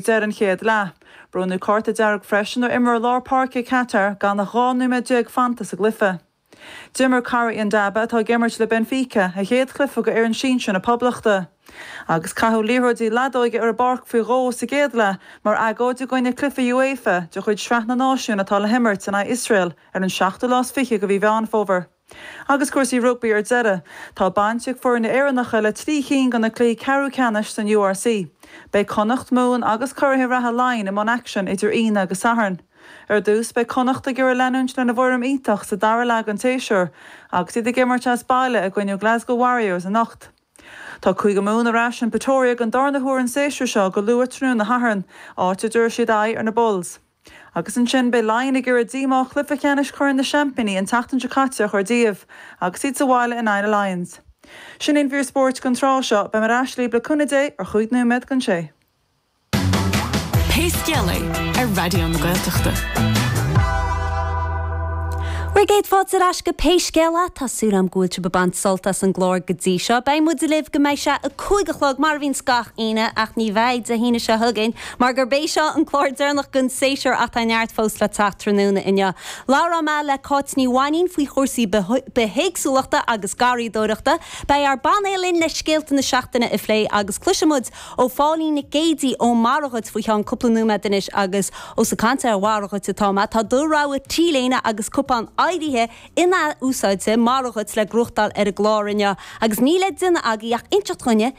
deireadh an chéad leath. Bronnadh cárta dearg freisin ar imreoir lár páirce Catar gan ach 12 nóiméad fanta sa gcluiche. D'imir Corrie Ndaba, atá ag imirt le Benfica, a chéad chluiche do fhoireann sinsear na Poblachta agus caitheadh liathróidí leadóige ar an bpáirc faoi dhó sa gcéad leath mar agóid i gcoinne cluife UEFA de chuid Sraith na Náisiún atá le himirt in aghaidh Iosrael ar an seachtú lá is fiche de mhí Mheán Fómhair. Agus cúrsaí rugbaí ar deireadh, tá baint ag foirne Éireannacha le trí cinn de na cluichí ceathrú ceannais san URC. Beidh Connacht, Mumhan agus curaithe reatha Laighin i mbun aicsin idir Aoine agus Satharn. Ar dtús, beidh Connacht ag iarraidh leanúint lena bhfoirm iontach sa dara leath den tséasúr agus iad ag imirt as baile i gcoinne Glasgow Warriors anocht. Tá Cúige Mumhan ar ais in Pretoria den darna huair an séasúr seo go luath tráthnóna Shathairn, áit a dtabharfaidh siad aghaidh ar na Bulls. Agus ansin beidh Laighin ag iarraidh díomá chluiche ceannais Chorn na Seaimpíní an tseachtain seo caite a chur díobh agus iad sa bhaile in aghaidh na Lions. Sin í an mhír spóirt don tráth seo, beidh muid ar ais libh le cúnamh Dé ar chúig nóiméad don sé. Pé Scéal É, ar Raidió na Gaeltachta. Bhur gcéad fáilte ar ais go Pé Scéal É. Tá súil agam go bhfuil sibh ag baint sult as an gclár go dtí seo. Beidh muid libh go mbeidh sé a cúig a chlog, mar a bhíonn gach Aoine, ach ní bheidh Dé hAoine seo chugainn Mar gurb é seo an clár deireanach den séasúr ach tá neart fós le teacht. Tráthnóna inniu, labhróidh mé le Cáit Ní Mhainín faoi chúrsaí bithéagsúlachta agus garraíodóireachta, beidh ár bpainéal linn le scéalta na seachtaine a phlé agus cloisfidh muid ó Phóilín Nic Géidigh ó Mora Dhuit faoi cheann cúpla nóiméad anois agus ós ag caint ar Mhora Dhuit atá mé, tá do rogha t-léine agus cupán oighrithe in-athúsáidte Mora Dhuit le gnóthachtáil ar an gclár inniu agus níl le déanamh agaibh ach inseacht dhúinne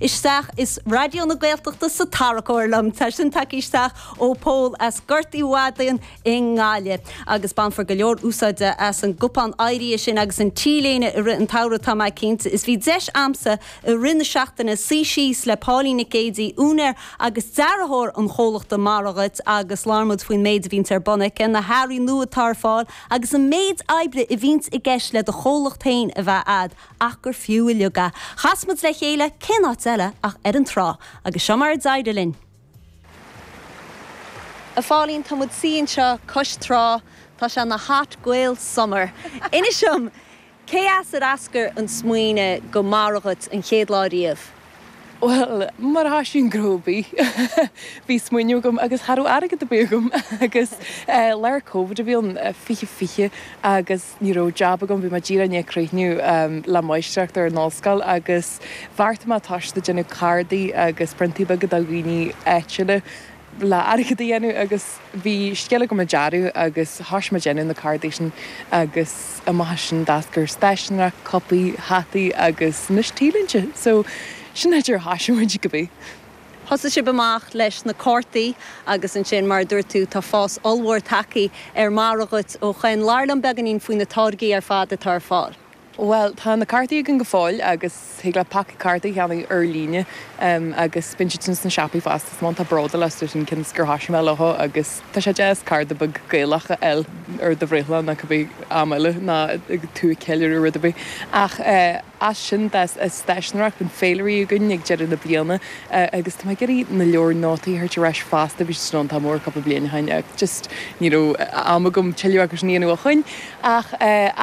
isteach is Raidió na Gaeltachta sa tarracóir liom. Tá sin tagtha isteach ó Pól as Gort Uí Mhadaín i nGaillimh. Agus bainfear go leor úsáide as an gcupán oighrithe sin agus an T-léine i rith an tsamhraidh tá mé cinnte. Is bhí deis a'msa i rith na seachtaine suí síos le Póilín Nic Géidigh, úinéir agus dearthóir an chomhlachta Mora Dhuit agus labhair muid faoin méid a bhíonns ar bun aici, na hearraí nua atá ar fáil agus an méid oibre a bhíonns i gceist le do chomhlacht féin a bheith a'd. ach gur fiú uilig é. Chas muid le chéile, cén áit eile ach ar an trá, agus seo mar a d'éirigh linn. A Phóilín, tá muid suí anseo cois trá, tá sé an-hot girl summer. Inis dom, cé as ar eascair an smaoineadh do Mora Dhuit an chéad lá riamh? Bhuel, mar a thoisíonn gnó ar bith, bhí smaoineamh agam agus cha raibh airgead ar bith agam agus eh, lár covid a bhí ann, fiche fiche agus. Ní raibh jab agam, bhí mé díreach i ndiaidh críochnú le máistreacht ar an ollscoil agus bheartaigh mé toiseacht ag déanamh cardaí agus priontaí beaga do dhaoine áitiúla le airgead a dhéanamh agus bhí scil agam ag dearadh agus thoisigh mé ag déanamh na cardaí sin agus amach as sin d'eascair stáiseanóireacht, cupaí, hataí agus anois T-léinte so sin an dóigh ar thoisigh muid cá bith. Thosaigh sibh amach leis na cártaí agus ansin, mar a dúirt tú, tá fás ollmhór tagtha ar an margadh agat ó shoin. Labhair liom beagáinín faoi na táirgí ar fad atá ar fáil. Bhuel, tá na cártaí againn go fóill agus thig leat paca cártaí a cheannach ar líne agus bíonn siad sin sna siopaí fosta. Is mé iontach bródúil astu sin cionn is gur thoisigh mé leo agus tá sé deas cárta beag Gaelach a fháil ar do bhreithlá nó cibé am eile nuair atá tú ag ceiliúradh rud ar bith ach eh, as sin d'fhás stáiseanóireacht bíonn féilirí againn ag deireadh na bliana agus tá mé ag iarraidh na leabhair nótaí a thabhairt ar ais fosta bhí siad sin iontach mór cúpla bliain ó shin ach just ní raibh am agam tuilleadh acu a dhéanamh ó shin ach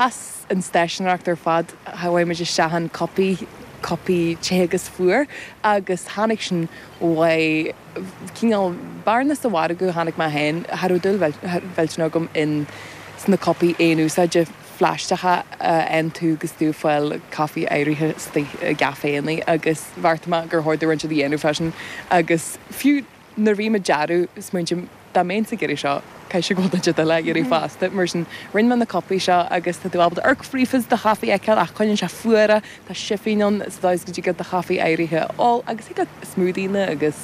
as an stáiseanóireacht ar fad chuaigh muid isteach in cupaí cupaí te agus fuar agus tháinig sin uaidh cineál bearna sa mhargadh a chonaic mé féin cha raibh dúil mhillteanach agam in sna cupaí aon úsáide phlaisteacha a fhaigheann tú agus tú ag fáil caife oighrithe istigh i gcaiféanna agus bheartaigh mé gur chóir dom rud inteacht a dhéanamh faoi sin agus fiú nuair a bhím ag dearadh smaointím dá mbeinnse ag iarraidh seo caithfidh sé go bhfuil daoine eile á iarraidh fosta mar sin rinne mé na cupaí seo agus tá tú ábalta amharc fríofa is do chaife a fheiceáil ach coinníonn sé fuar é Tá sifín ann sa dóigh is go dtig leat do chaife oighrithe a ól agus thig leat smoothieanna agus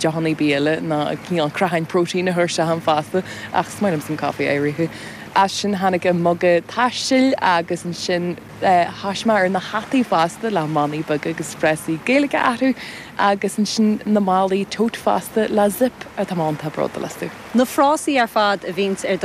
deochanna bia eile ná cineál creatháin protéin a chur ann fosta ach is maith liomsa an caife oighrithe. As sin tháinig an muga taistil agus ansin thoisigh mé ar na hataí fosta le manaí beaga agus frásaí Gaeilge orthu agus ansin na málaí tote fosta le zip orthu tá mé iontach bródúil astu. Na frásaí ar fad a bhíonns ar do